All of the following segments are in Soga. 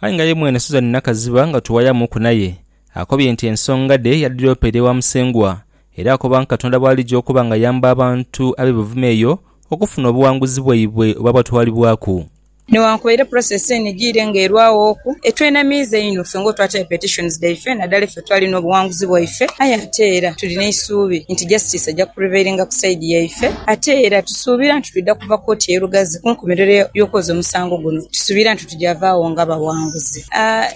Aye nga ye mwene Suzani Nakaziba nga tuwayamuuku naye, akobye nti ensonga dhe yadhiropeera ewa Musengwa era akoba nti Katonda bw'alija okuba ng'ayamba abantu ab'e Buvuma eyo okufuna obuwanguzi bwaibwe obwabatwalibwaku. Newankubadde process eno ejiire nga erwaghoku, etwenamiiza inho ffe ng'otwataayo petitions dhaife nadala effe. Twalina obuwanguzi bwaife, aye ate era tuli n'eisuubi nti Justice aja kureveiringa ku sayidi yaife. Ate era tusuubira nti twidha kuva kooti ye Lugazi ku nkomerero y'okwoza omusango guno. Tusuubira nti tuja vaagho nga bawanguzi.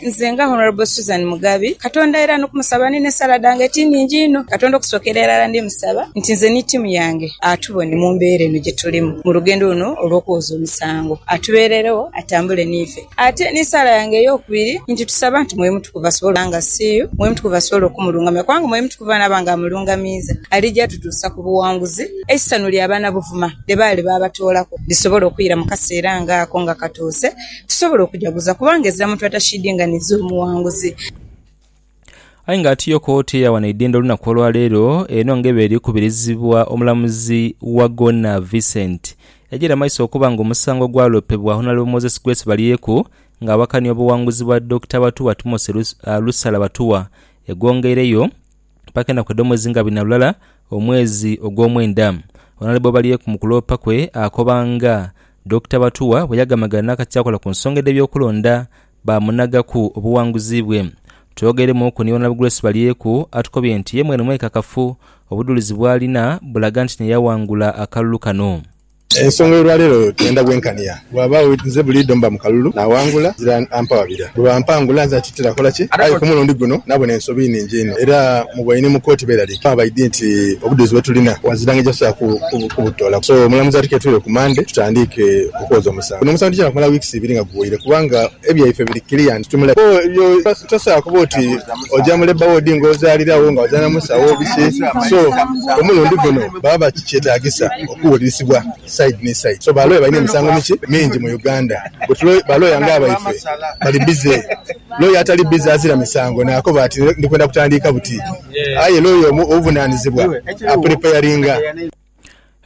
Nze nga Honourable Susan Mugabi, Katonda era n'okumusaba ni n'esaala dhange eti nhingi inho. Katonda okusookera irala ndi musaba nti nze ni tiimu yange atubone mu mbeera eno gye tulimu mu lugendo luno olw'okwoza omusango. Atubeereregho, atambule n'ife. Ate ni saala yange ey'okubiri nti tusaba nti Mwoyo Mutukuvu asobole okuba nga CU, Mwoyo Mutukuvu asobole okumulungamya, kubanga Mwoyo Mutukuvu bw'anaaba nga amulungamiiza, alija atutuusa ku buwanguzi, eisanhu lya banabuvuma lye baali baabatoolaku lisobole okwira mu kaseera nga ako nga katuuse, tusobole okujaguza, kubanga ezira muntu atakiidinganiza omuwanguzi. Aye nga ati yo kooti eyawa n'eidhindho olunaku olwaleero eno nga eba eri kubirizibwa omulamuzi Wagona Vincent yajiira mumaiso okuba nga omusango ogwalopebwa Honalebo Moses Grace Balyeku nga awakania obuwanguzi bwa Dokita Batuwa Timothy Lusala Batuwa egwongeireyo paka enaku edhomwezi nga abiri nalulala omwezi ogwomwenda. Honalebo Balyeku mukuloopa kwe akoba nga Dokita Batuwa bweyagamagana nakati akola kunsonga edhebyokulonda baamunhagaku obuwanguzi bwe. Twogeiremuuku ni Wonab Grace Balyeku atukobye nti ye mwene mwekakafu obudhulizi bw'alina bulaga nti naye yawangula akalulu kano. Ensonga y'olwaleero twenda bwenkania. Bwabaagho nze buliidho mba mu kalulu naawangula nzira ampa wabira. Bwe bampangula nze atitira kola ki? Aye ku mulundi guno nabona ensobi nhingi inho era mu bwaine mu kooti beeraliikirivu abaidhi nti obudhulizi bwe tulina bwa nzira ng'ejasobola kubutoolaku. So omulamuzi atuketwire ku Mmande tutandiike okwoza omusango. Guno omusango tugya kumala weeks ibiri nga guwoire kubanga ebyaife biri clear nti tuli mu labour ward. Ebyo tosobola kuba oti oja mu labour ward nga ozalira wo nga ozalira musawo biki so omulundi guno baba bakikyetagisa okuwulirisibwa side ni side so ba lawyer balina emisango miki? mingi mu Uganda but ba lawyer nga abaife bali busy lawyer atali busy azira misango nakoba ati ndikwenda kutandiika buti aye lawyer omu owuvunanizibwa a preparinga.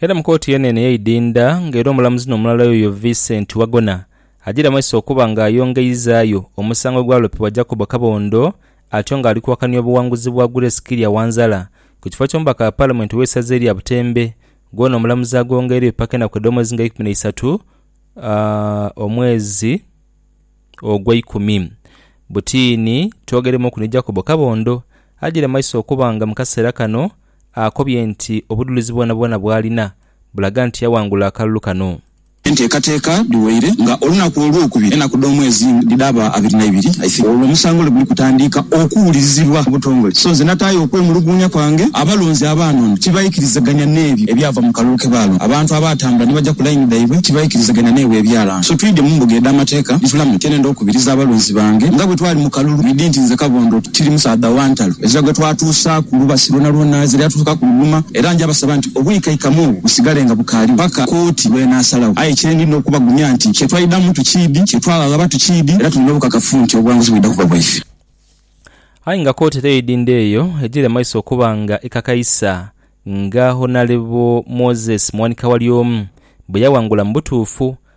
Era mu kooti yeene eno eyeidinda nga era omulamuzi nomulala yoyo Vincent Wagona ajiira maiso okuba nga ayongeizaayo omusango ogwalopebwa Jacob Kabondo atyo nga alikuwakania obuwanguzi bwa Grace Kirya Wanzala ku kifo ky'omubaka wa Palamenti ow'esaza erya Butembe gwona omulamuzi agwongeiregho paka enaku edh'omwezi nga eikumi naisatu omwezi ogweikumi butiini twogeremuuku ni Jacob Kabondo ajiire maiso okuba nga mu kaseera kano akobye nti obudhulizi bwonabwona bwalina bulaga nti yawangula akalulu kano. Enteekateeka dhiwaire nga olunaku olwokubiri enaku dhomwezi dhidhaba abiri naibiri I think olwo omusango lweguli kutandiika okuwulirizibwa mubutongole so nze nataayo okwemuluguunya kwange abalonzi abaana ono tibaikirizaganya nebyo ebyava mukalulu kebaalonda abantu abaatambula nibaja kulaini dhaibwe tibaikirizaganya nebwo ebyalanga so twidhye mumbuga edhamateeka ntulamu nti enenda okubiriza abalonzi bange nga bwetwali mukalulu bwidhi nti nze Kabondo tiri musaadha wantalo Ezira gwe twatuusa ku lubasi lwonalwona ezira yatuusaku ku luluma, era nja basaba nti obwikaikamu obwo busigale nga bukaaliwo paka kooti lw'enaasalagho. Aye kye ndidha okubagumya nti kye twaidamu tukiidhi, kye twaghagha tukiidhi, era tuli n'obukakafu nti obuwanguzi bwidha kuba bwaife. Aye nga kooti teidinde eyo, egire maiso okuba nga ekakaisa nga Honarebu Moses Mwanika Walyomu bwe yawangula mu butuufu